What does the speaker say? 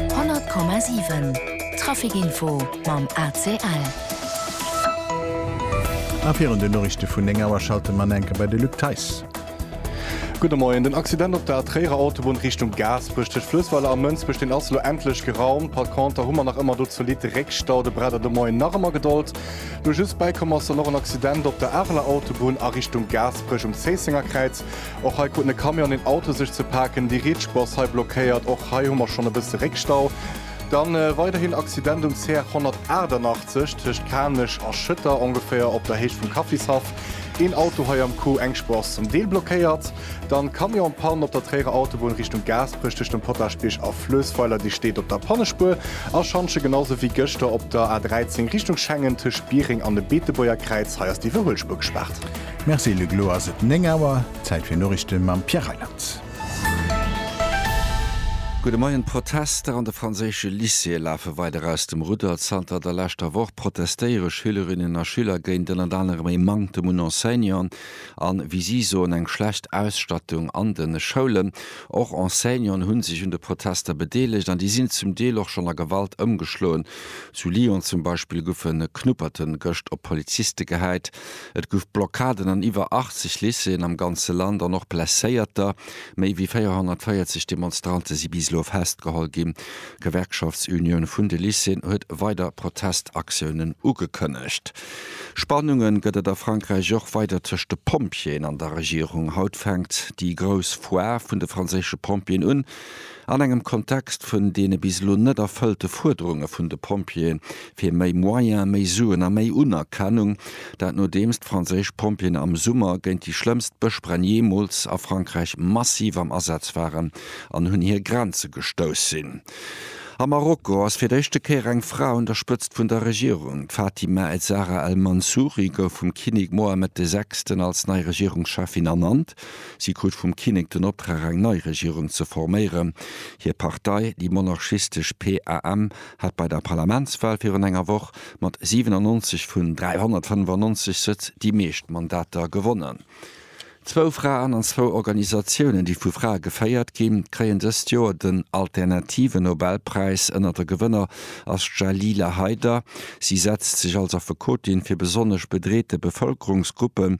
100,7 Trafic Info mam ACL. A virun den Noriichte vun 9 Auer schalte mer an enke bei de Luc Theis. Gudde Moien. Den Accident op der Tréierer Autobunn Richtung Gaasperech tëscht Fluessweiler a Mënsbech, deen ass elo endlech geraumt. Par conter hu mer nach ëmmer do zolidd Réckstau. De Bredder de Moien nach ëmmer Gedold. Lo just bäikomm ass dann och en Accident op der Areler Autobunn a Richtung Gaasperech um Zéissenger Kräiz. Och hei kruten e Camion an een Auto sech ze paken. Déi rietsch Boss hei blockéiert. Och hei hu mer schonn e bësse Réckstau. Dann weiderhin Accident um CR 188 tëscht Kanech a Schëtter, ongeféier op der Héicht vum Kaffishaff. Een Auto hei am Coup, eng Spur ass zum Deel blockéiert. Dann Camion-Pann op der Tréierer Autobunn Richtung Gaasperech tëscht dem Potagebierg a Fluessweiler. Dir steet op der Pannespuer a Schanche, genau sou wéi gëschter op der A 13 Richtung Schengen tëscht Biereng an dem Beetebuerger Kräiz. Hei ass d'Iwwerhuelspuer gespaart. Merci Luc, elo ass et 9 Auer, Zäit fir Noriichte mam Pierre Reyland. Gudde Moien, D'Protester an de franséische Lycéeë lafe weider aus dem Rudder. Zanter der leschter Woch protestéiere Schülerinnen a Schüler géint ënnert anerem ee Manktem un Enseignanten a, wéi si soen, eng schlecht Ausstattung an de Schoulen. Och Enseignanten hu sech un de Protester bedeelegt an déi sinn zum Deel och schonn a Gewalt ëmgeschloen. Zu Lyon zum Beispill goufe Knupperten gëscht op Poliziste gehäit. Et gouf Blockaden an iwwer 80 Lycéeën am ganze Land an och Blesséierter. Méi wéi 440 Demonstrante si bis elo festgeholl ginn. D'Gewerkschaftsunioun vun de Lycéeën huet weider Protestaktiounen ugekënnegt. Spannunge gëtt et a Frankräich och weider tëscht de Pompjeeën an der Regierung. Haut fänkt déi grouss Foire vun de franséische Pompjeeën un. An engem Kontext vun deene bis elo net erfëllte Fuerderunge vun de Pompjeeë fir méi Moyen, méi Suen a méi Unerkennung, dat nodeems d'franséisch Pompjeeën am Summer géint déi schlëmmst Bëschbränn jeemools a Frankräich massiv am Asaz waren an un hir Grenze gestouss sinn. A Marokko ass fir d'éischte Kéier eng Fra un der Spëtzt vun der Regierung. D'Fatima Ezzara El Mansouri gouf vum Kinnek Mohammed de Sechsten als nei Regierungscheffin ernannt. Si krut vum Kinnek den Optrag eng nei Regierung ze forméieren. Hir Partei, déi monarchistesch PAM, hat bei der Parlamentswal virun enger Woch mat 97 vun 395 Sëtz déi meescht Mandater gewonnen. Zwou Fraen an zwou Organisatiounen, déi vu Frae geféiert ginn, kréien dëst Joer den Alternative Nobelpräis. Ënnert de Gewënner ass d'Jalila Haider. Si setzt sech als Affekotin fir besonnesch bedreete Bevëlkerungsgruppen,